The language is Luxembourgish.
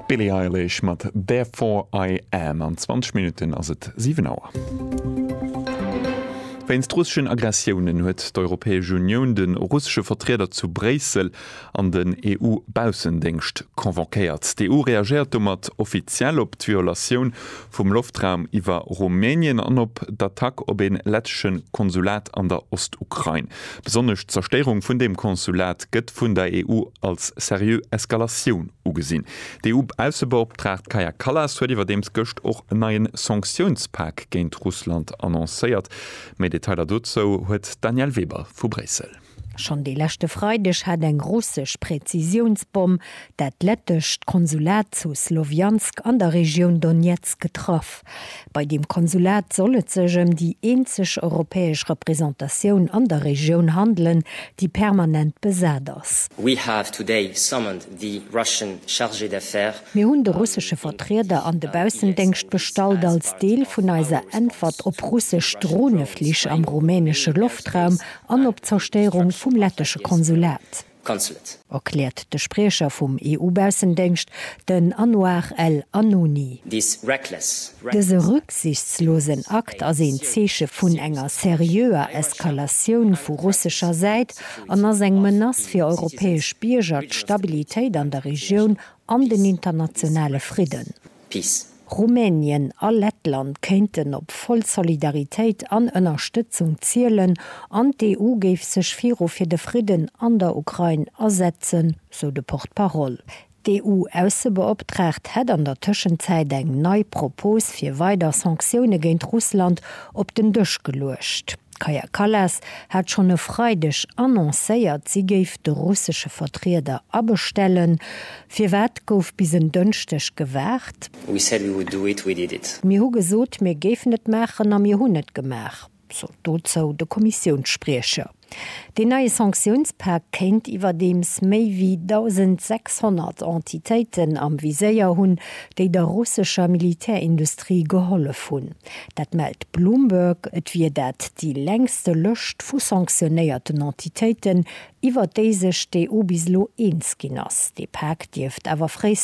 D'Billie Eilish mat Therefore I Am. An 20 Minutten ass et 7 Auer. Wéinst russeschen Aggressiounen huet d'Europäesch Unioun de russesche Vertrieder zu Bréissel an den EU-Baussendéngscht convoquéiert. D'EU reagéiert domat offiziell op d'Violatioun vum Loftraum iwwer Rumänien an op d'Attack op ee lettesche Konsulat an der Ostukrain. Besonnesch d'Zerstéierung vun deem Konsulat gëtt vun der EU als seriö Eskalatioun ugesinn. D'EU-Aussebeoptraagt Kaja Kallas huet iwwerdeems gëscht och en neien Sanktiounspak géint Russland annoncéiert. Méi Detailer dozou huet d'Danièle Weber vu Bréissel. Schonn de leschte Freideg hat eng russesch Präzisiounsbomm dat lettescht Konsulat zu Slowiansk an der Regioun Donezk getraff. Bei deem Konsulat soll et sech ëm déi eenzeg europäesch Representatioun an der Regioun handelen, déi permanent besat ass. We have today summoned the Russian Chargé d'Affaires. Mir hunn de russesche Vertrieder an de Baussendéngscht bestallt als Deel vun eiser Äntwert op russesch Droneflich am rumänesche Loftraum an op d'Zerstérung vum lettesche Konsulat, erkläert de Spriecher vum EU-Baussendéngscht, den Anouar El Announi. Dëse rücksichtslosen Akt ass een Zeeche vun enger seriöer Eskalatioun vu russescher Säit an ass eng Menace fir europäesch Bierger, d'Stabilitéit an der Regioun an den internationale Fridden. Peace. Rumänien a Lettland kéinten op voll Solidaritéit an Ënnerstëtzung zielen an d'EU géif sech viru fir de Fridden an der Ukrain asetzen, sou de Porte-parole. D'EU-Aussebeoptraagt hätt an der Tëschenzäit eng nei Propos fir weider Sanktioune géint Russland op den Dësch geluecht. D'Kaja Kallas hat schonn e Freideg annoncéiert, si géif de russesche Vertrieder abestellen. Firwat gouf bis en Dënschdeg gewaart? We said we would do it, we did it. Mir hu gesot, mir géifen et maachen a mir hunn et gemaach, sot dozou de Kommissiounsspriecher. Deen neie Sanktiounspak kéint iwwerdeems méi wéi 1.600 Entitéiten am Viséier hunn, déi der russescher Militärindustrie gehollef hunn. Dat mellt Bloomberg. Et wier dat déi längste Lëscht vu sanktionéierten Entitéiten, iwwer déi sech d'EU bis elo eens ginn ass. Dee Pak dierft awer fréistens